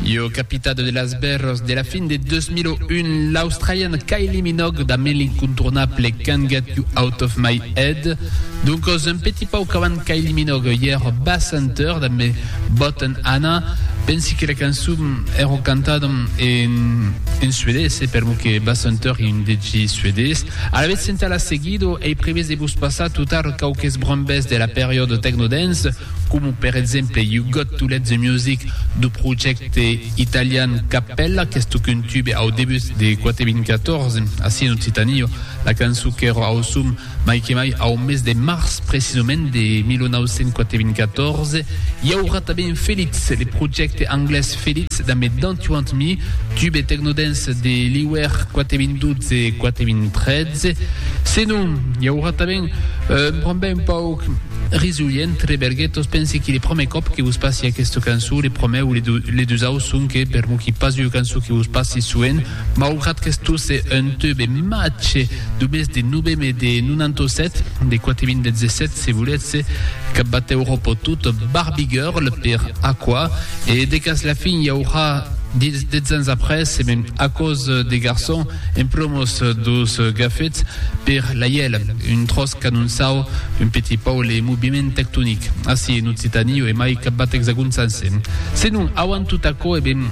Io capitado de las bèrros de la fin de 2001, l'australian Kylie Minogue damb l'incontournable Can't Get You Out Of My Head. Doncos, un petit pauc avant Kylie Minogue, i èr Bass Hunter damb Botan Anna. Pensi que la cançon èra cantada en suedés, e per mo que Bass Hunter ei un DJ suedés. Alavetz entà la seguido ei previst de vos passar totar quauques brombes de la periòda technodance, coma per exemple You Got To Let The Music dau projècte italian Cappella qu'es toc un tube au debut de Quate 2014 ací en Occitània, la cançon qu'èra au som mai que mai au mes de març precisament de 1984. I aurà tanben Felix, le projècte anglés. Felix damb eth dant uant mi, tub e tecnodens de Liuèr quate vint dotze quate vint tretze. Se non, i aurà tanben un brambè un pauc risolhent, Reberguetos, pensi qu'ei le promè còp que vos passi aquesta cançon, le promè o le dusau sonque, per moqui pas ua cançon que vos passi soent, Maugrat qu'estó se un teu be mache du mes de noveme de 97, de quate vint de zesset se volètze, cap batèu ropo tot barbigurl per aquò, e de cas la fin i aurà dits dètz ans après, e mèm aquò's de garçon en plomos dos gafets per l'aièl, un tròç canonsau, un petit pau le moviment tectonic, ací en Occitanie o emai cap bat exagonsanse. Se non, auant tot aquò, e ben,